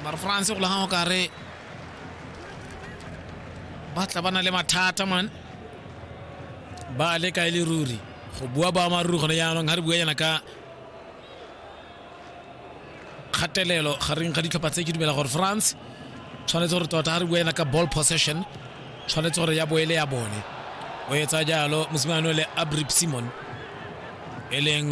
mara france go lagang o kare ba tla ba na le mathata man ba le kae le ruri go bua boammaaruri gone jaanong ga re bua yana ka kgatelelo gareng ga ditlhopha tse ke dumela gore france tshwanetse gore tota ga re bua yana ka ball possession tshwanetse gore ya boele ya bone o etsa jalo mosimane le abrip simon e leng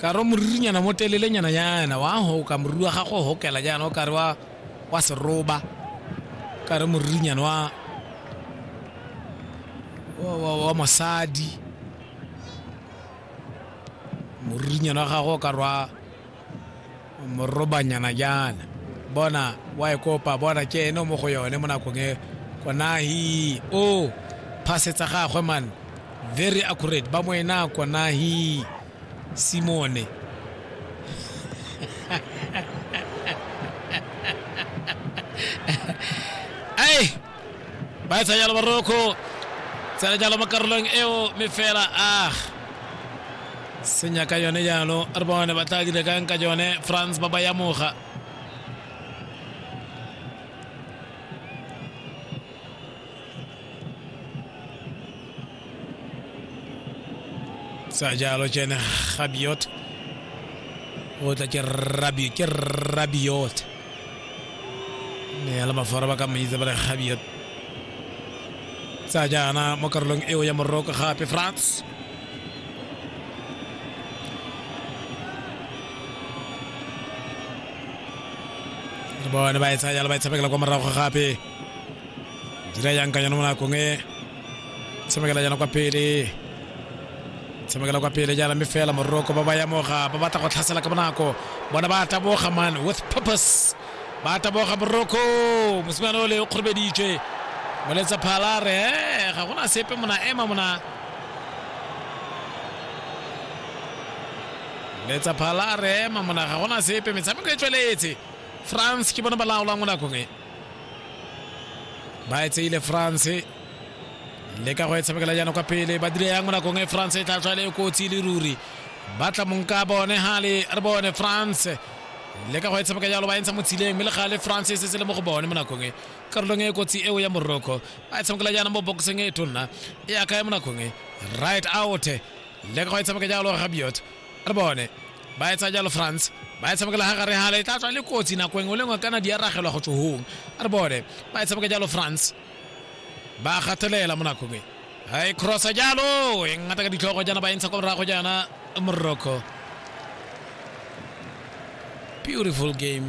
ka re moririnyana mo telelenyana yana wa goka moriri wa gago o gokela jaana o kare wa wa seroba ka re moririnyana wa wa- wa wa mosadi moririnyana wa gago o kare wa morobanyana jaana bona wa e kopa bona ke ene o mo go yone mo nakong e konahi o phasetsa gagwe man very accurate ba mo ena konahi simone ai ba e tsa jalo baroko tsena jalo mo karolong eo me fela ah senya ka yone jalo re bone ba tla dire kang ka yone france ba ba yamoga sa jalo tsene gabiot o tla ke rabio ke rabiot ne ala mafara ba ka mmitsa ba re gabiot sa jaana mo karolong eo ya moroko gape france le bone ba e tsaya jalo ba e tshabekela kwa morago gape dira yang ka yone mo nakong e tshamekela jana kwa pele tshamekela kwa pele jana mme fela moroko ba ba yamoga ba batla go tlhasela ka bonako bona ba taboga man with purpose ba taboga moroko mosimane o le o kgorobeditswe moletsa phala re "Eh, ga gona sepe mona ema mona letsa phala re ema mona ga gona sepe metshameko e tsweletse france ke bona ba laolang mo nakong e ba e tseile france le ka go e tshamekela jaana kwa pele ba dire yang mo nakong e france e tla tswa le kotsi le ruri ba tla mong ka bone gale re bone france le ka go e tshameka jalo ba entsha mo tshileng mme le gale france e setse le mo go bone mo nakong e karolong e kotsi eo ya morocco ba e tshamekela jaana mo boxeng e tonna e aka ya mo nakong e right out le ka go e tshameka jalo gabiot re bone ba etsa jalo france ba e tshamekela ga gare gale e tla tswa le kotsi nako engwe le ngwe kana di aragelwa go tsohong re bone ba e tshameka jalo france ba gatelela mo nakong e ga e crossa jalo e ngata ka ditlhogo jaana ba e ntsha kwa morago jaana morocco beautiful game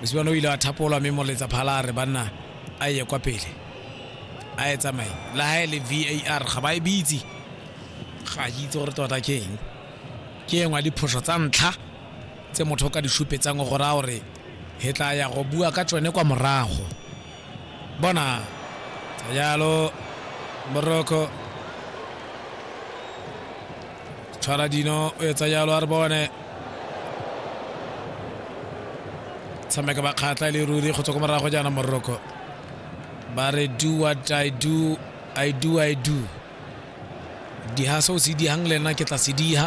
mosibane o ile wa thapolwa mme moletsa phala a re banna a ye kwa pele a e tsamaye le ha e le var ga ba e bitse ga ke itse gore tota ke eng ke engwe ya diphoso tsa ntlha tse motho o ka di supetsang gore a gore he tla ya go bua ka tsone kwa morago Bona ka jalo Morocco tshwara dino o etsa jalo a re bone tshameka bakgatla e le ruri go tswa ko morago jaana Morocco ba re do what I do I do I do diha se o se dihang le nna ke tla se diha